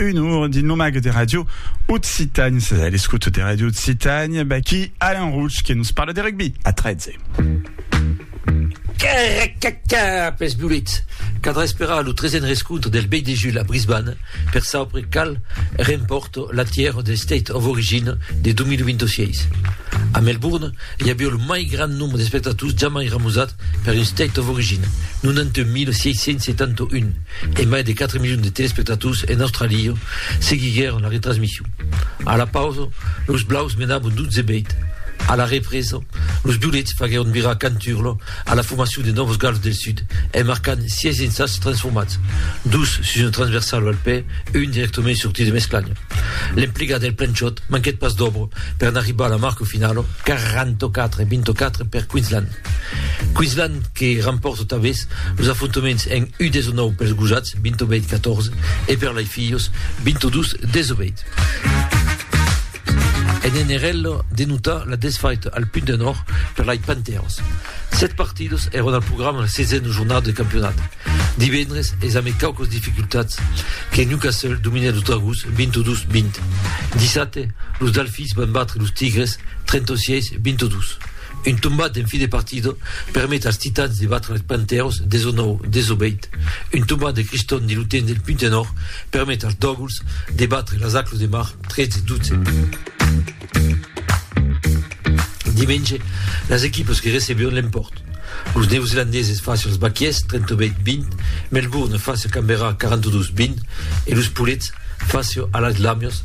un our dins lo mag de Radio Occitània. Sas a l'escoute de Radio Occitània, Baki Alain Rouge que nos parle de rugby a 13. Caracaca, pes Bullet, cadrà esperar lo 13 rescontre del Bay de Jul a Brisbane per saupre cal rempòrt la tièra de State of Origin de 2026. A Melbourne, i avió lo mai grand nombre d'espectators jamai ramosat Per un State of Origin, 91.671 e mai de 4 milions de telespectators en Australia seguiguèron la retransmission. A la pausa, los blaus menabon 12 bèit. A la represa, los violets faguèron virar canturla a la formacion de Novos Gals del Sud en marcant 6 insats transformats, dos sus una transversala al pè, un dirèctament sortit de mesclanha. L'emplegat del Planchot manquèt pas d'òbra per n'arribar a la marca finala, 44 e 24 per Queensland. Queensland que rampòrta tanbés los afrontaments en U19 pels gojats, 28 14, e per lai filhos, 22 18. En NRL, de notar la desfaita al Punt de Nòrd per lai Panthers. Sèt partidas èron al programa la sesena jornada de campionat. Divendres es amé quauquas dificultats que Newcastle dominèt los Dragons, 22 20. Dissabte, los Dalfis van batre los Tigres, 36 22. Un tombat en fin de partida permet als Titans de batre als Panthers 19, 18. Un tombat de Christon de l'U-Ten del Punta Nord permet als Doggles de batre las Aclos de Mar 13, 12. Dimenge, las equipas que recebion l'empòrt. Los Neozelandeses face als Baquiers 38, 20, Melbourne face a Canberra 42, 20 e los Poulets face a las Lamias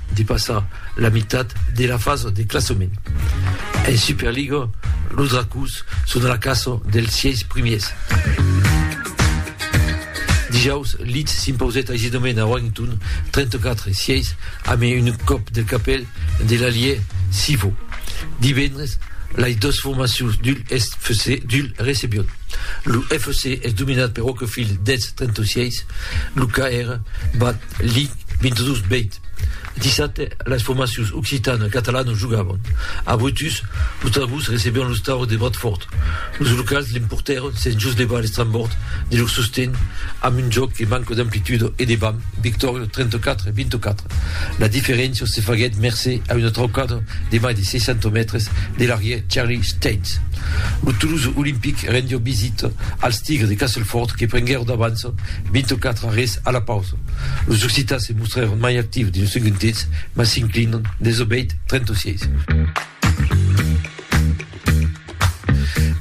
Depassa la mitat de la fasa de classament. En Superliga, los Dracòs son a la caça dels sièis primièrs. Dijaus, Leeds s'impausèt aisidament a Warrington, 34 e 6, amb un còp del capèl de l'alièr Sivo. Divendres, lais dos formacions d'Hull FC d'Hull recebion. Lo FC es dominat per Wakefield 10, 36. Lo KR bat Li 22 beit dissabte las formacions occitana e catalana jogavan. A Brutus, los Trabucs recebián los Taurus de Bradfòrd. Los locals l'emportèron sens jos levar l'estrambòrd de lor sosten amb un jòc que manca d'amplituda e de vam, victòria 34 a 24. La diferéncia se faguèt mercé a una traucada de mai de 60 mètres de l'arrièr Charlie Staines. Lo Toulouse Olympic rendiá visita als Tigres de Castleford que prenguèron d'avans 24 arrés a la pausa, los occitans se mostrèron mai actius dins lo segond temps, mas s'inclinan dens lo bèit 36.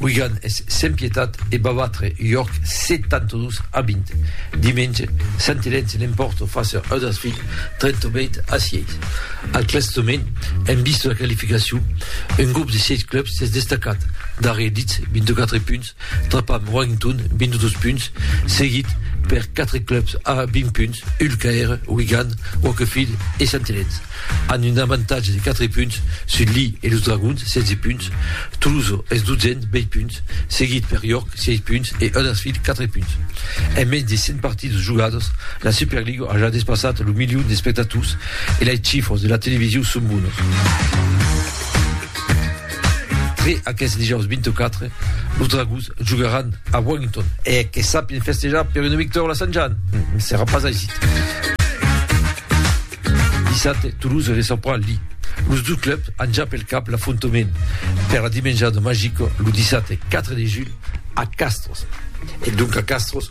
Wigan es sens pietat e va batre York 72 a 20. Dimenge, Sant Elen se l'empòrta fàcia Huddersfield 38 a 6. Al classament, en vista de la qualificacion, un grop de 6 clubs s'es destacat, darrièr Leeds, 24 punts, Trapam Warrington, 22 punts, seguit per 4 clubs a 20 punts, Hull KR, Wigan, Wakefield e Sant Helens, amb un avantatge de 4 punts sus li e los Dragons, 16 punts. Toulouse es 12n, 20 punts, seguit per York, 6 punts, e Huddersfield, 4 punts. En mens de 100 partidas jogadas, la Superliga a ja despassat lo milion d'espectators e las chifras de la televisiu son bonas. Tre aqueste dijòus 24, los Dragons jogaràn a Wellington. E que sapien festejar per una victòria la Sant Jan, ne serà pas aisit. Dissabte, Toulouse recebrà Lille. Los dos clubs an ja pel cap l'afrontament per la dimenjada magica lo dissabte 4 de julh a Castres. E donc a Castres,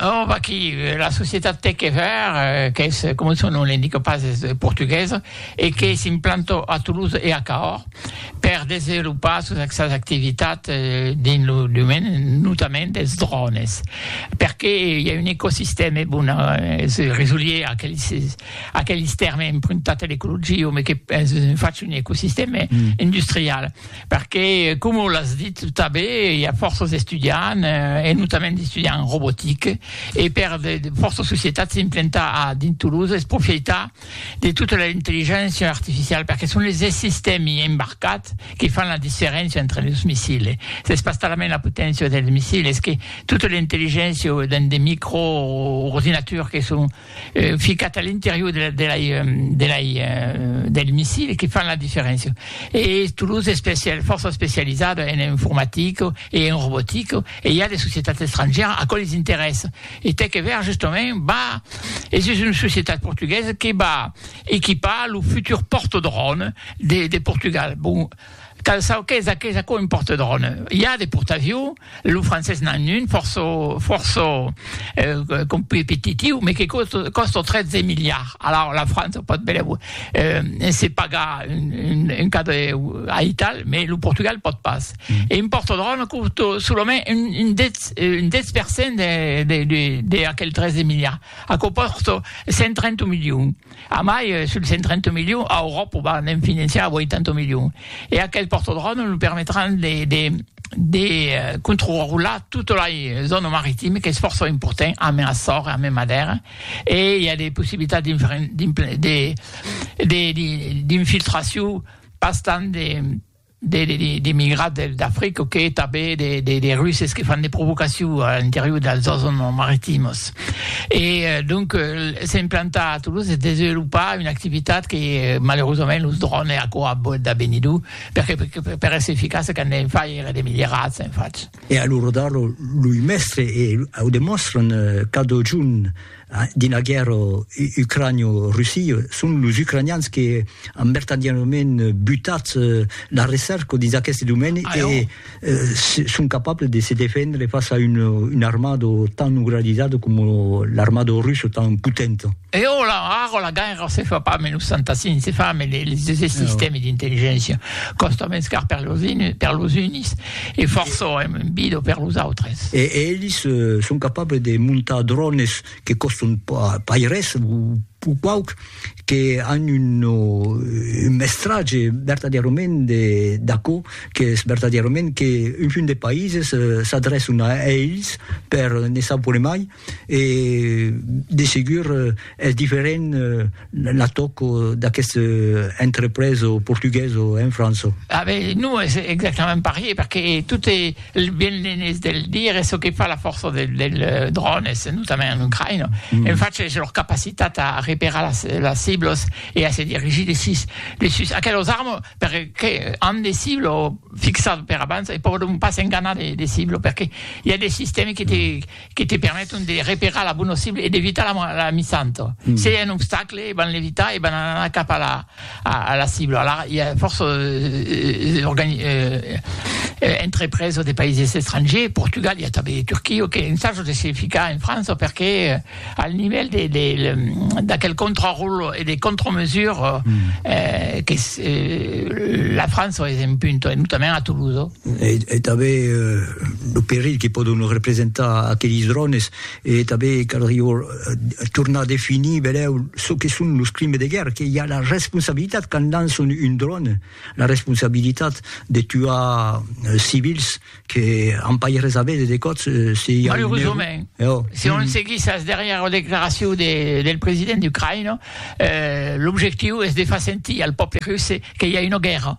Oh, vaquí, la societat Teckever, qu'es, coma son nom l'indica pas, es portuguesa e que s'implanta a Toulouse e a Cahors per desevolopar sos sas activitats dins lo domaine notament dels drònes, perqué i a un ecosistèma, bon, es resolier a aqueles a aqueles tèrmes empruntats a l'ecologia, mai que es fach un ecosistèma industrial. Perque, coma l'as dit tanben, i a fòrça d'estudiants, e notament d'estudiants en robotique, e per de fòrça societats s'implantar a dins Toulouse es profeitar de tota la intelligéncia artificiala, perque son es sistèmi embarcats que fan la diferéncia entre los missile. S'es pas talament la poténcia dels missile, es que tota l'intelligéncia dins de micro-ordinaturs que son, ficat a l'interior de la, de la, de la, del missile que fan la diferéncia. E Toulouse es especial, fòrça especializada en informatica e en robotica e i a de societats estrangèras a quò les interessa. E tè que ver justament va, es es una societat portuguesa que va equipar lo futur porta-drone de, de Portugal. Bon, Cal çò qu'es aqueth aquò un porte-drone. I a de portaviu, lo francés n'an un fòrça fòrça competitiu, me que còsta 13 miliards. Alaur la França o pòt belèu se pagar un cadre aital, me lo Portugal pòt pas. E un porte-drone còsta solament un 10 un 10 per cent de de de aquel 13 miliards. Aquò còsta 130 milions. A mai, sul 130 milions, a Euròpa va ne'n finançar 80 milions. E aquel pòrtodròme nos permetràn de controrular tota la zòna maritima, qu'es fòrça important, ambe Açores e ambe Madèra, e i a de possibilitats d'infiltracion pas tant de... d'emigrats d'Africa que tanben de Russes que fan de provocacion a l'interior dels zòns maritimos. E donc s'implantar a Toulouse e desvelopar una activitat que malerosament los drònes e aquò a boet da benir dur, perque per èsser eficace qu'an de far èra de milierats en fach. E a l'ora d'ara loi mèstre e au demòstran cada jorn. Dins la guèrra ucranio-russia, son los ucranians que an vertadièrament butat la recerca dins aqueste domeni e son capables de se defendre fas a una armada tan organizada coma l'armada russa tan potenta. E ara, ara la guèrra se fa pas mai los fantassins, se fa mai los sistèmes d'intelligéncia. Còsta mens car per los unis, E fòrça èm un bido per los autres. E elis son capables de montar drònes que còstan pas res, o quauq que an un mestratge vertadièrament d'aquò qu'es vertadièrament qu'un munt de païses s'adrèçan a elis per ne savoir mai e de segur es diferent la tòc d'aqueste entrepreso portugueso en França. Ah ben non es exactament parier perque tot e ben l'enes de le dire es çò que fa la fòrça del dròn es notament en Ucraïna en fach es lor capacitat a reperar las las ciblos e a se dirigir de sus de sus aquelos armes perque an de ciblo fixat per abans e pòdon pas enganar de de ciblo perque i a de sistèmi que te que te permeton de reperar la bona cibla e d'evitar la missanta. Se i a un obstacle, van l'evitar e van anar cap a la cibla. Alara, i a fòrça entrepreses de païses estrangers, Portugal, i a tanben de Turquia, que ensajan de se ficar en França perque al nivèl d'aquel contraròtle e de contramesures que la França es en punta, e notament a Toulouse. e tanben lo perilh que pòdon representar aqueles drònes, e tanben caldrió tornar a definir benlèu çò que son los crimes de guèrra, que i a la responsabilitat quand lançon un dròne, la responsabilitat de tuar civils que an pas res a véder de còps se i a un error. Malerosament, se on seguís as darrièras declaracions del president ucraïnés, l'objectiu es de far sentir al pòble russe que i a una guèrra.